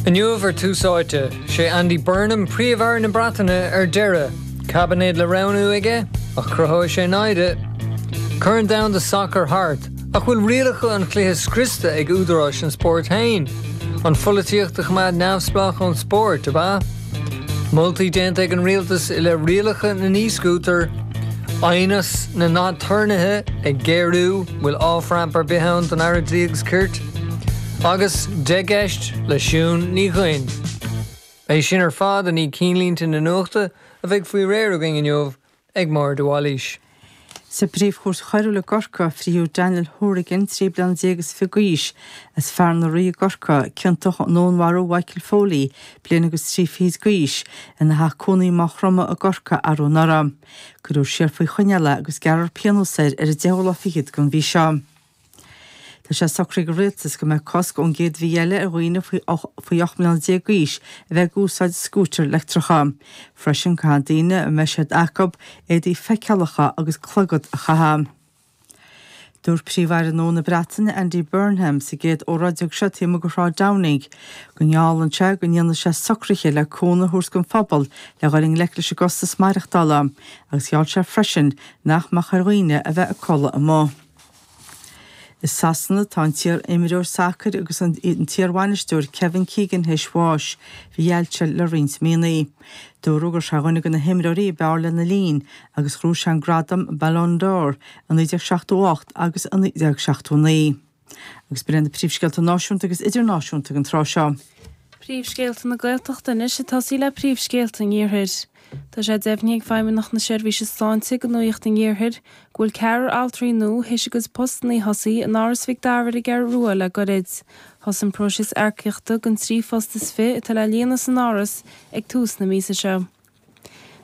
Inniu ar Tús Áite, 'Sé Andy Burnham Príomh-Aire na Breataine ar deireadh, caibinéad le roghnú aige ach cruthóidh sé naimhde. Corn domhanda sacair thart, ach bhfuil rialacha an chluiche scriosta ag údaráis an spóirt féin? An pholaitíocht a choimeád neamhspleách ón spórt, ab ea? Moltaí déanta ag an Rialtas i leith rialacha na n-e-scútar, aighneas na n-aturnaetha ag géarú, bhfuil off-ramp ar bith ann don Aire Dlí agus Cirt? agus Deich gCeist le Siún Ní Dhuinn. É sin ar fad i ndiaidh cinnlínte na nuachta a bheidh faoi réir againn inniu ag Máire de Bhailís. Sa bpríomhchúirt choiriúil i gCorcaigh, frítheadh Daniel Hourigan, trí bliana déag is fiche d'aois, as Fearann na Rí i gCorcaigh, ciontach i ndúnmharú Mhichael Foley, bliain agus trí fichid d'aois, ina theach cónaí i Maigh Chromtha i gCorcaigh arú anuraidh. Cuireadh siar faoi choinneáil é agus gearrfar pionós air ar an deichiú lá fichead den mhí seo. Tá sé socraithe ag an Rialtas go mbeidh cosc ón gcéad mhí eile ar dhaoine faoi 18 mbliana d'aois a bheith ag úsáid scútair leictreacha. Freisin, caithfidh daoine, a mbeidh siad acu, éadaí feiceálacha agus clogad a chaitheamh. Dúirt Príomh-Aire nua na Breataine, Andy Burnham, sa gcéad óráid a thug sé taobh amuigh de Shráid Downing go ngeallann sé go ndéanfaidh sé socruithe le cúnamh a thabhairt don phobal le dhul i ngleic leis an gcostas maireachtála agus gheall sé freisin nach mbeadh ar dhaoine a bheith ag codladh amuigh. I Sasana, tá an t-iar-imreoir sacair agus an t-iarbhainisteoir Kevin Keegan théis bháis. Bhí ailse air le roinnt míonnaí. Dúradh go raibh sé ar dhuine de na himreoirí ab fhearr lena linn agus ghnóthaigh sé an gradam Ballon d'Or i 1978 agus i 1979. Agus b'in iad na príomhscéalta náisiúnta agus idirnáisiúnta ag an tráth seo. Príomhscéalta na Gaeltachta anois ag tosaí le príomhscéalta an Iarthair. Tá sé deimhnithe ag Feidhmeannacht na Seirbhíse Sláinte do Nuaíocht an Iarthair go bhfuil ceathrar altraí nua théis a gcuid postannaí a thosaí in Áras Mhic Dara ar an gCeathrú Rua le goirid. Thosaigh an próiseas earcaíochta don trí phost is fiche atá le líonadh san Áras ag tús na míosa seo.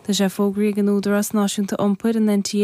Tá sé fógraithe ag an Údarás Náisiúnta Iompair, an NTA,